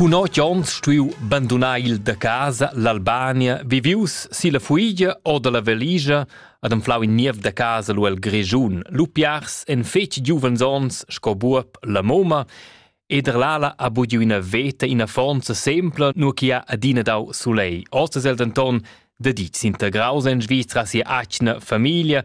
Cun otg onns stuiu bandunar il da casa l'Albania, vivius silla fuigia o dalla valigia ad anflau in niev da casa lu el Grischun. Lu piars en fetg giuvens onns sco buob la moma ed er l'ala ha bugiu ina veta ina fonza sempla, nur che ha adina dau sulei. Ost es el denton da ditg s'integraus en Svizra sia atgna famiglia,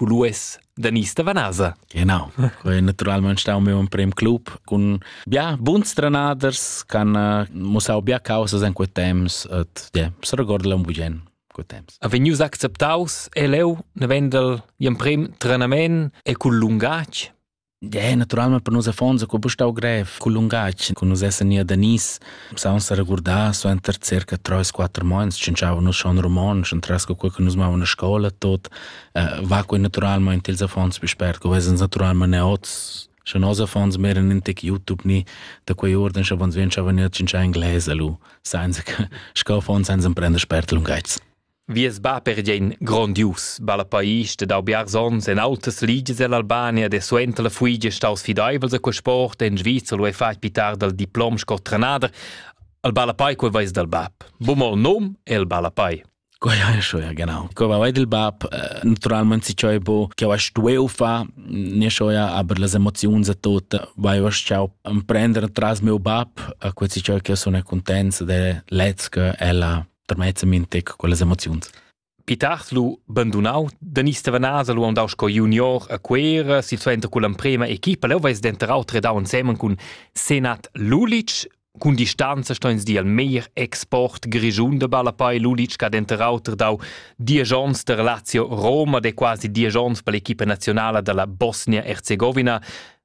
Culues Danista Vanasa. Genau, quei è naturalmente stau meu emprem club con bia buns trenaders che hanno mussau bia causas in quei temps et yeah, se recorda un bugen quei temps. Ha vegnius acceptaus e leu ne vendel gl'emprem trenament e cul lungatg É naturalmente per nus affonds co stau grev cul lungatg che nus essan nia da Nis. Pussau sa regurdar suenter circa 3-4 mois scienziavan nus schon romontsch entras co che nus mavan a scola tot uh, va quei naturalmente ils affonds più spert co vesens naturalmente neots Sche nos affons meren in tec YouTube ni da quei orden sche vons vien schavan nia cincin inglese lu, senza che sco affons senza prender spert lungaits. Vies bab era gian grondius, ballapais e dau biars onns en autas ligias ell'Albania e suenter la fuigia staus fideivels a quel sport en Sviza lu ei fatg pitar dal diplom sco trenader. Il ballapai quei veis dal bab. Bum il num e il ballapai. Quai ha schon, ja genau. Ko va il bab, eh, naturalmente si ciò bo, che va stueu fa, ne schon ja, aber las emozioni za tot, vai va ciao prendere tras mio bab, a questi ciò che sono contents de lezca ella termez min tec quellas emoziuns. Pitars lu bandunau, Denis Stevanasa lu andau sco junior a Cuera, silsuenter con l'emprema equipa, leu veis denterau tredau ensemen cun Senat Lulic, Cun distanza sto ins dir al meir export grischun de Ballapai Lulic che ha denter auter dau dies onns der Lazio Roma, de quasi dies onns per l'equipa nazionala dalla Bosnia-Herzegovina.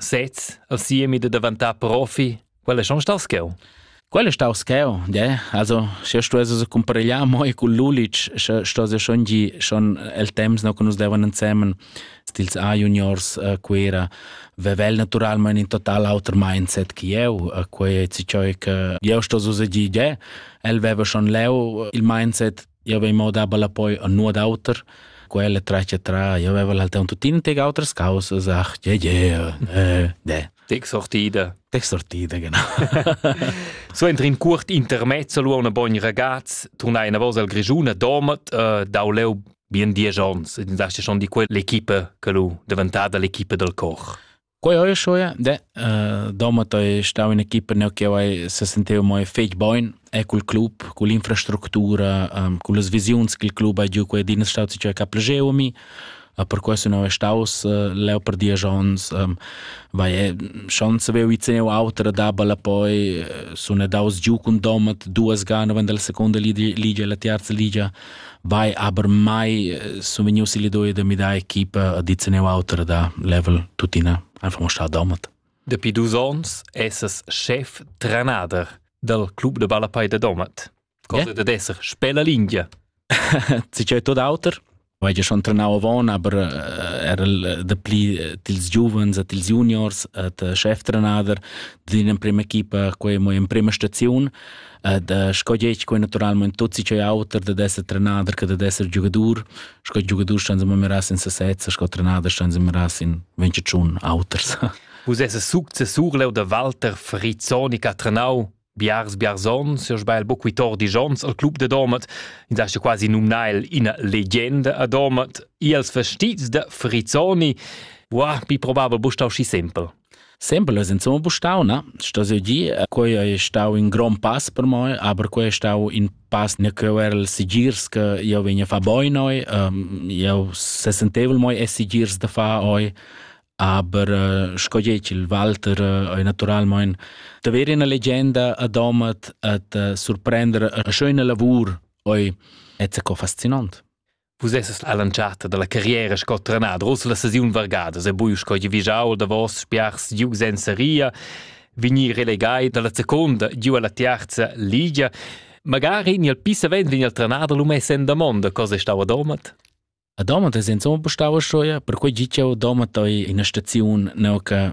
Sez, al siemi da daventà profi, quel è schon star scheu. Quel è stau scheu, de. Also, se stuesse se comparegliar moi cul Lulic, sche stuesse schon gi schon el temps no che nus devan insemen stils A juniors uh, Cuera, vevel naturalmente in total auter mindset che eu, uh, quei è ciò che eu sto so se gi de. El veva schon leu il mindset Io avevi mo daba la poi a nuot auter. Quella traccia tra, io aveva l'altern tuttina teg autras causas, ach, yeah, yeah, äh, de. Texortide. Texortide, genau. so entri in curt intermezzo lu una bogn ragaz, turna una vosa al Grigiuna, domat, uh, dau leu bien dies ons, e din dasti schon di quell'equipe che lu deventata l'equipe del Koch. Quei hai scho, ja. De, uh, domat hai stau in equipa neu che hai se senteva mai fetg bein e cul club, cun l'infrastructura, um, cun las visiuns che il club ha giu quei din è stato ciò che ha plagiau a mi. Uh, per questo non è staus uh, leu per dies ons. Um, vai, è, schon sapevo vi teneu autra dabala poi uh, sono daus giù con domat duas gane wenn della seconda liga liga e la terza liga Vai, aber mai sumvegnius il idea da midar equipa a dit neu auter da level tuttina einfach mo sta domat. Dapi dus ons essas chef trenader dal club de Ballapei de Domat. Cosa yeah. da esser spella lingia. Ti c'è tot auter? Vai ja schon trenau avon, aber eh, era de pli eh, tils giuvens et tils juniors et eh, chef trenader din in prima equipa, quei mo in prima staziun. ed uh, sco gec quei naturalment tutti c'è auter da esser trenader che da esser giugadur sco giugadur stan se meras in sesezza sco trenader stan se meras in 21 auters Vus es successur leu da Walter Frizzoni che ha trenau biars biarzon se sbail boquitor di Jons al club de Domat in sa quasi numnai ina legenda a Domat i als vestits da Frizzoni Wow, mi probava bustau si simpel. Sempel es insomma bustau, na? Sto seo gir, quei ei stau in grond pass per moi, aber quei è stau in pass ne ch'eu er'l sigirs che io vegn a far boi noi. Ähm, io sesentevel moi e sigirs da far oi, aber äh, sco dieci il Walter äh, ei naturalmein da avere una leggenda a domat e da surprender eine schöne lavur oi, è co faszinant. Vus esses all'antschatta dalla carriera sco trenader, ussa la sesiun vargada, se bui sco givigiau davos spiars giu senza ria, vignir relegai dalla seconda giu alla tiarza ligia. Magari ni al pisavent vegn al trenader lu mess en damonda, cosa stau a domat? A domat es insomma stau a schoia, per quei gi ch'eu domat ei ina staziun neu che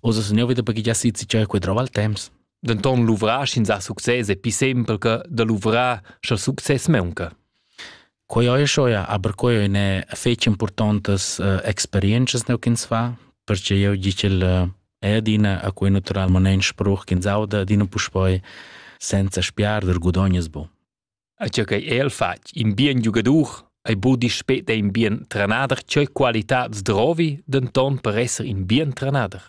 Oz es nouv da baghigiar sit si tschera quedrov al temps. Denton luvrar sch'ins ha success è pi sempel che da luvrar sche success maunca. Quei ei schoia, aber quei ne fetg importantes uh, experiences neu ch'ins fa, perché eu dice il uh, è adina a quei naturalment spruch ch'ins auda din un puspoi senza spiar der gudognes bu. a tgei che el fatg in bien giugadur ei budi spet ein bien trenader tgei qualità zdrovi denton per esser in bien trenader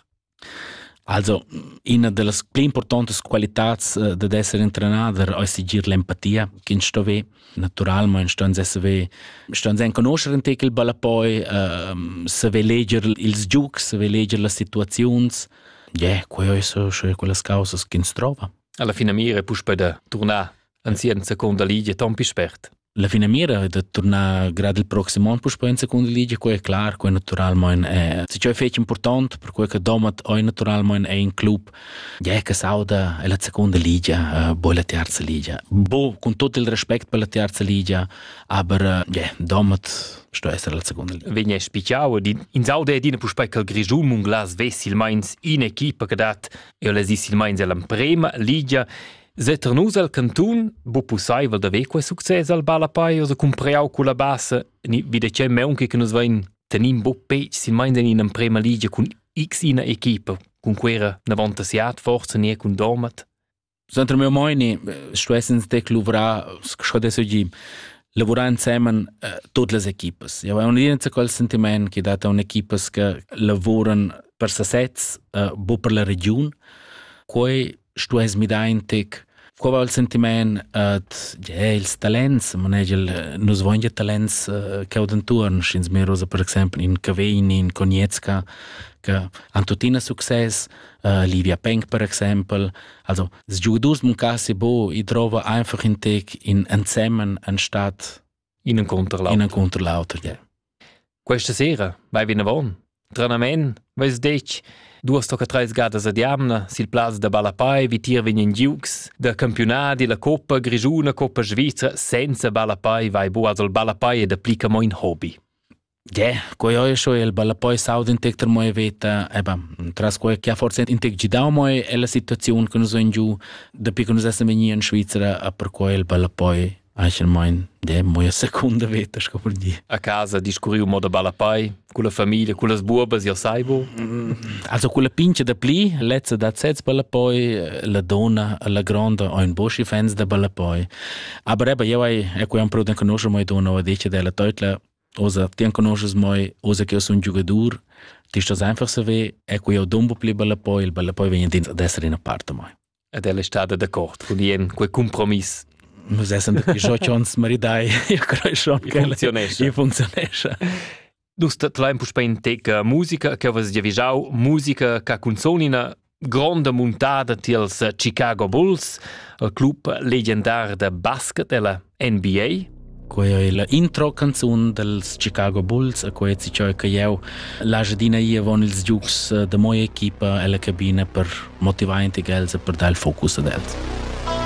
Also, una delle più importanti qualità eh, di essere un trenader è sigir l'empatia che ins sto ve naturalmente sto ins ve sto ins conoscere in tec il balla poi uh, se ve leger ils giugs se ve leger le situazioni yeah, quelle sono quelle cose che ins trova alla fine mira puspei da tornare anzi en seconda ligia ton pi spert. La finamira è da tornar grad il prossimo anno puspei in seconda ligia, quei è clar, quei naturalmente è. Se ciò è fece importante, per quei che Domat è naturalmente è in club, ja che sauda è la seconda ligia, eh, poi la terza ligia. Boh, con tutto il rispetto per la terza ligia, aber ja, Domat sto essere la seconda liga. Vegna spicciau in saude ed in puspei che il Grisum un glas vessi il meins in equipa che dat e les is il meins alla prima ligia Setter nus el cantun, bu pusseivel da ver quei success al ballapei o da cumpreau culla bassa ni vi de tgei meunchi che nus vein tenin bu pec silmeins en in emprema ligia cun x ina equipa cun quera n'avantassiat forza nie cun Dormat? Suenter meu meini stuessens tec luvrar, sco adesso gi, lavurar insemen eh, tutte le equipas. Eu ho un'idea quel sentiment che data un'equipas che lavuran per sasez, eh, bu per la region. Quei stuess midar in tec. Qua va il sentiment ad ja, ils talents, manegel, nus voin ja talents uh, che ho d'entuorn, sch'ins merosa per exempel in Cavegni, in Cognetzka, che han tuttina success, uh, Livia Penk per exempel. Also, es giudus mun cassi bo, i trova einfach in tec in ensemmen anstatt in contro l'altro. In contro l'altro. Yeah. Questa sera vai vinavon. Tranamen, veis detg, duas tocca treis gadas ad jamna sil plaz da Balapai vi tier vegnan giugs da campionadi la coppa grigiuna, coppa svizra senza Balapai vai bu also Balapai e da plica mo in hobby. Ge, quei ei scho el balla poi saud in tec ter moi veta, eba, tras quei che ha forse in tec gidau moi è la situaziun che nus ein giu, dapi che nus essem vegni in Svizzera, a per quei il balla poi anche mein, de, moi secunda veta, sco per dir. A casa discurriu moda balla poi, con la famiglia, con las buobas, io sai bu? Also con la pince da pli, lezza da sez balla poi, la donna, la gronda, ein boschi fans da balla poi. Aber eba, io ai, e quei am pro den conosce moi donna, o dice della teutla, Osa, ti enconosces moi, osa che io sun giugadur, ti stas einfach saver, e quei ho dumbo pli bella poi, il bella poi vegn dins ad essere in a parte moi. Ed ella è stata d'accordo con Ian, quel compromiss. Nus essem dapi schott ons maridai, io crei schon che funzionesce. Io funzionesce. Dus te lein puspei in teca musica che vas giavijau, musica ca cunzonina gronda muntada tiels Chicago Bulls, il club legendar da basket e la NBA. Quei ei la intro canzun dels Chicago Bulls, a quei si ciò che jeu l'agedina ia von ils giugs de moi equipa ella cabina per motivar intig els e per dar il focus ad els.